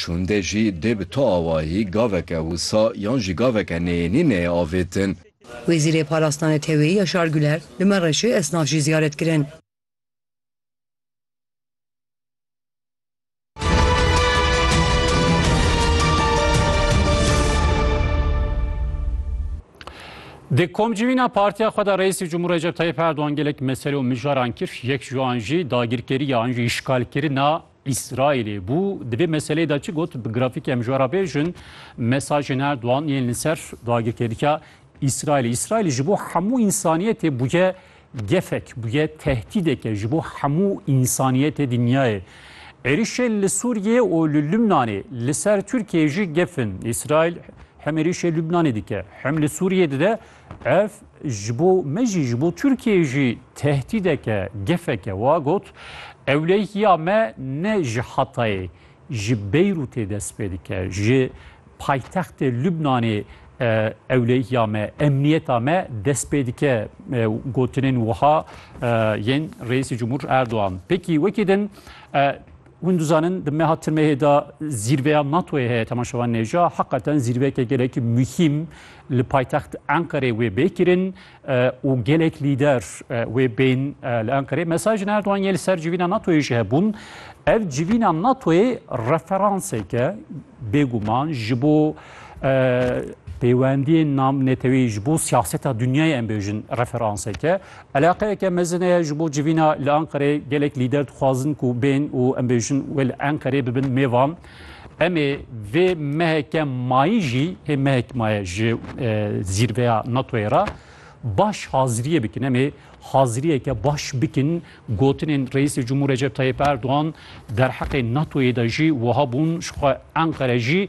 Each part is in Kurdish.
Şûnde jî dê bi tu awayî gaveke wisa yan jî gaveke neyênî neyê avêtin. Wezîrê Parastina Neteweyî Yaşar Güler, li Mereşê esnaf jî ziyaret kirin. Di komcivîna partiya xwe de Reîsê Cumhur Recep Tayyip Erdogan gelek mesele û mijaran kir. Yek ji wan jî dagirkeriya an jî îşgalkirina Îsraîlê bû. Di vê meseleyê de çi got? Bi grafîkê em ji we re bêjin mesajên Erdogan yên li ser dagirkerîka Îsraîlê. Îsraîl ji bo hemû însaniyetê bûye gefek, bûye tehdîdeke ji bo hemû însaniyetê dinyayê. Êrişên li Sûriyeyê û li Lubnanê li ser Tirkiyeyê jî gef in. Îsraîl hem êrişê Lubnanê dike hem li Sûriyeyê dide. Ev ji bo me jî ji bo Tirkiyeyê jî tehdîdeke gefeke wa got, Ewlehiya me ne ji Hatayê, ji Beyrûtê dest pê dike. Ji paytextê Lubnanê ewlehiya me, emniyeta me dest pê dike gotinên wiha yên Reîsê Cumhur Erdogan. Pêkî wekî din Hûn dizanin di meha timehê de zîrveya NATO'yê heye Tema Şewanêja heqeten zîrveyeke gelekî muhîm li paytext Enqerê wê bê kirin û gelek lîder wê bên li Enqerê. Mesajên Erdogan yê li ser civîna NATO'yê jî hebûn. Ev civîna NATO'yê referanseke bêguman ji bo peywendiyên nam netewî ji bo siyaseta dunyayê em bêjin referanseke. Eleqeyeke mezin e ji bo civîna li Enqerê gelek lîder dixwazin ku bên û em bêjin wê li Enqerê bibin mêvan. Em ê vê meheke mayî jî hê mehek maye ji zîrveya NATO'yê re baş haziriyê bikin. Em ê haziriyeke baş bikin gotinên Reîsê Cumhur Recep Tayyip Erdogan derheqê NATO'yê de jî wiha bûn ji xwe Enqere jî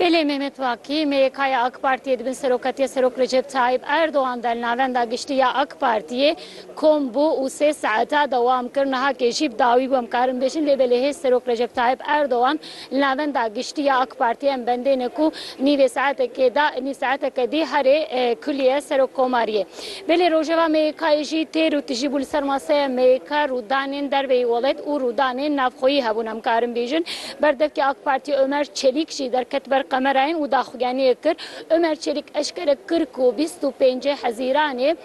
Belê Mehmet Vakî, MYK'ya AK Partiyê di bin seroketiya Serok Recep Tayyîp Erdogan de li Navenda Giştî ya AK Partiyê kom bû û sê saeta dewam kir. Niha kê jî bi dawî bû em karin bêjin lê belê hêz Serok Recep Tayyîp Erdogan li Navenda Giştî ya AK Partiyê em bendêne ku nîvê saetekê de nîv saeteke dî herê kulîye Serokkomariyê. Belê rojeva MYK'yê jî têr û tijî bû li ser maseya MYK, rûdanên derveyî welêt û rûdanên navxweyî hebûn em karin bêjin. Berdevkê AK Partiyê Omer Çelîk jî derket ber kamerayên û daxuyaniyek kir. Omer Çelîk eşkere kir ku bîst û pêncî Hezîranê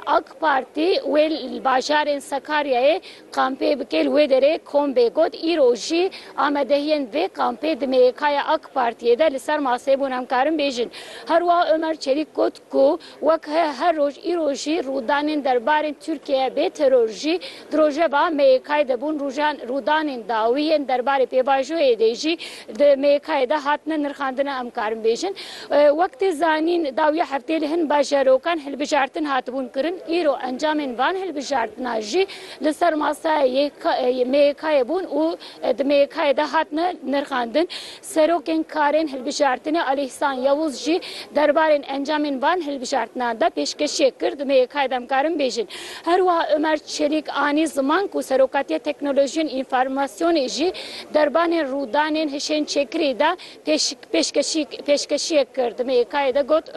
AK Partî wê li bajarên Sakaryayê kampê bike li wê derê kombê got îro jî amadehiyên vê kampê di MYK'ya AK Partiyê de li ser maseyê bûn em karin bêjin. Herwiha Omer Çelîk got ku Wek her roj îro jî rûdanên derbarê Tirkiyeyê bê teror jî di rojeva MYK'ê de bûn. Rojan rûdanên dawî yên derbarê pêvajoyê dê jî di MYK'ê de hatine nirxandin em karin bêjin. Wek tê zanîn dawiya hefteyê li hin bajarokan hilbijartin hatibûn kirin. Îro encamên van hilbijartina jî li ser masaya MYK'ê bûn û di MYK'ê de hatine nirxandin. Serokên Karên Hilbijartinê Alî Îhsan Yewûz jî derbarên encamên van hilbijartinan de pêşkêşiyek kir, divê yekayê demkarin bêjin. Herwiha Omer Çelîk anî ziman ku Serokatiya Teknolojiyên Înformasyonê jî derbanên rûdanên hişên çêkirî de pêşkêşiyek kir, divê yekayê de got,